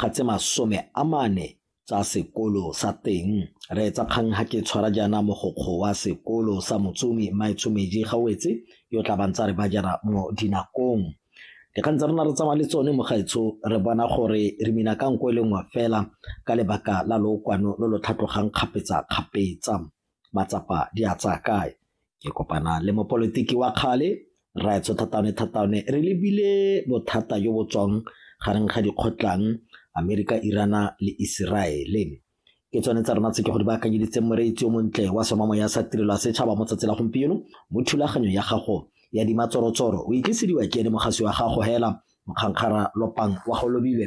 ga tse masome a mane tsa sekolo sa teng. Reetsa kgang ga ke tshwara jaana mogokgo wa sekolo sa Motsomi Maetshomeji Gawetse yo tla bantsa re ba jara mo dinakong. Dikgang tsa rona re tsamaya le tsone mo gaetsho re bona gore re mina ka nko e le nngwe fela ka lebaka la lookwano lo lo tlhatlogang kgapetsa-kgapetsa. matsapa di a tsaya kae ke kopana le mopolotiki wa kgale raetso thataone thataone re lebile bothata jo bo tswang gareng ga dikgotlang amerika irana le iseraele ke tsone tsa rona tse ke go di baakanyeditseng moreitsi o montle wa somamo ya sa tirelo ya setšhaba mo tsatsi la gompieno mo thulaganyo ya gago ya dimatsorotsoro o itlisediwa ke ene mogasi wa gago hela mokgankgara lopang wa go lobilwe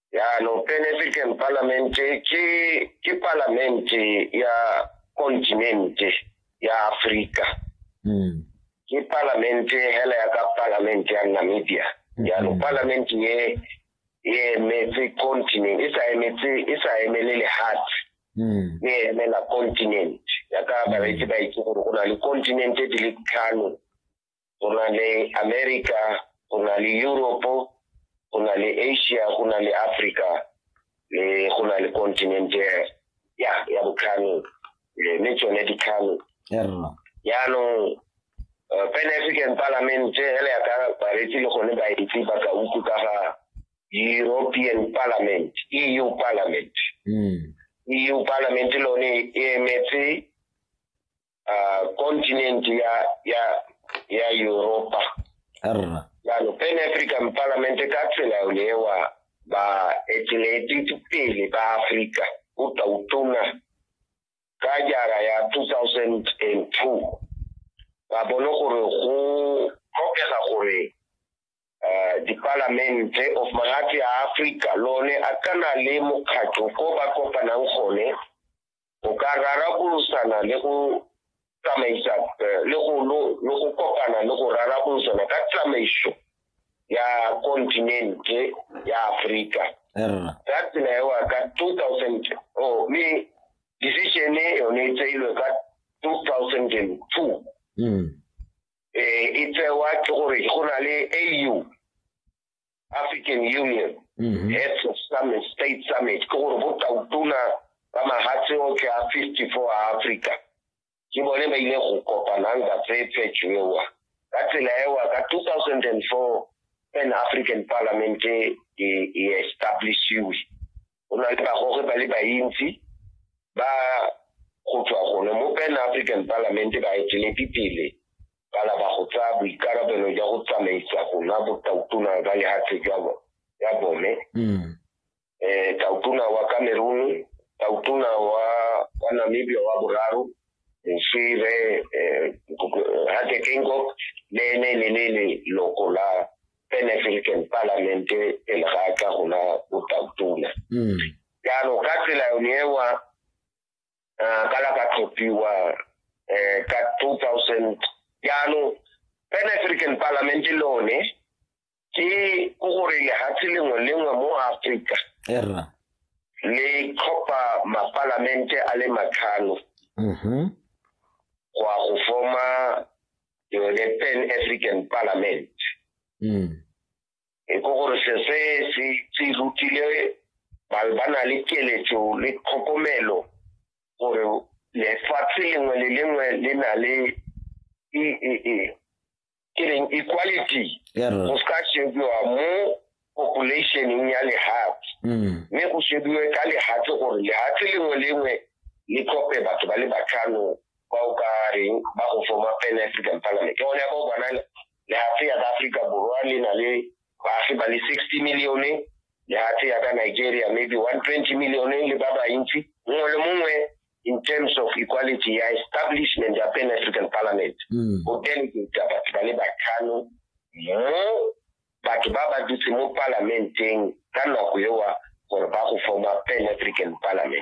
yaanong pan african parliament ke ke parliament ya kontinente ya afrika mm. ke parliament hela ya ka parliament ya namibia mm-hmm. yaanong parliament ye e emetse continent e sa emetse e sa emele lehatshe mm. e emela continent ya ka bareetsi ba itse gore go na le continente di le tlhano go na le america go na le europe go na le asia go na le africa le go na le continent ya ya botlhano mme tsone ditlhano jaanong eh, pan african parliament ele ya ka baretsi le gone baetsi ba ka utlwe ka ga european parliament eu parliament mm. eu parliament lone e emetse uh, continent ya ya ya europa arra jalo pan african parliament e ka tsela yo lewa ba etileti pele ba africa o tla o tona ka jara ya 2002 ba bone gore go tlhokega gore eh, dipalamente of magatse a africa lone a kana le mokgatlho ko ba kopanang gone go ka rarabolosana le go tsamaisa eh, le go lo lo go kopana le go rarabolosana ka tsamaiso ya kontinente ya Afrika Erra. ka tsela eo ka 2000 oh me decision e yone e tseilwe ka 2002 Mm. eh e tsewa ke gore go na le AU African Union mm -hmm. Heads of Summit State Summit ke gore bo tautona ba mahatshe otlhe a 54 a Africa ke bone ba ile go kopanang ba tseye phetšo ewa ka tsela ewa ka 2004 pan African Parliament e, e establishiwe go na le bagoge ba le bantsi ba go tswa gone mo pan african parliament ba eteledi pele ba laba go tsaya boikarabelo jwa go tsamaisa go nwa botautona ba lehatshe jwa ya bone mm. eh tautona wa cameroon tautona wa wa namibia wa boraro moswire eh, eh hateke nkok le ene le le loko la Pan African Parliament pele ga a tla go na botautona mm. jaanong ka tsela yone ewa eh, ka la ka tlhophiwa um ka two thousand jaanong Pan African Parliament lone ke ko gore lehatshe lengwe lengwe mo Afrika le tlhopha mapalamente a le matlhano mm-hmm. go ya go forma ke yone pan african parliament mm. e ko gore se se se se rutile ba ba na le keletso le tlhokomelo gore lefatshe lengwe le lengwe le na le e e e ke reng equality go se ka shebiwa mo populationeng ya lehatshe mm. mme go shebiwe ka lehatshe gore lehatshe lengwe lengwe le tlhope batho ba le batlhano ba o ka reng ba go forma pan african parliament ke gone ya ka o bona lehatshe ya ka aforika borwa le na le baagi ba le sixty millione lehatshe ya ka nigeria maybe one twenty millione le ba bantsi mongwe le mongwe in terms of equality ya establishment ya pan african parliament mm. go delegate batho ba le batlhano mo batho ba ba dutse mo palamenteng ka nako ewa gore ba go forma pan african parliament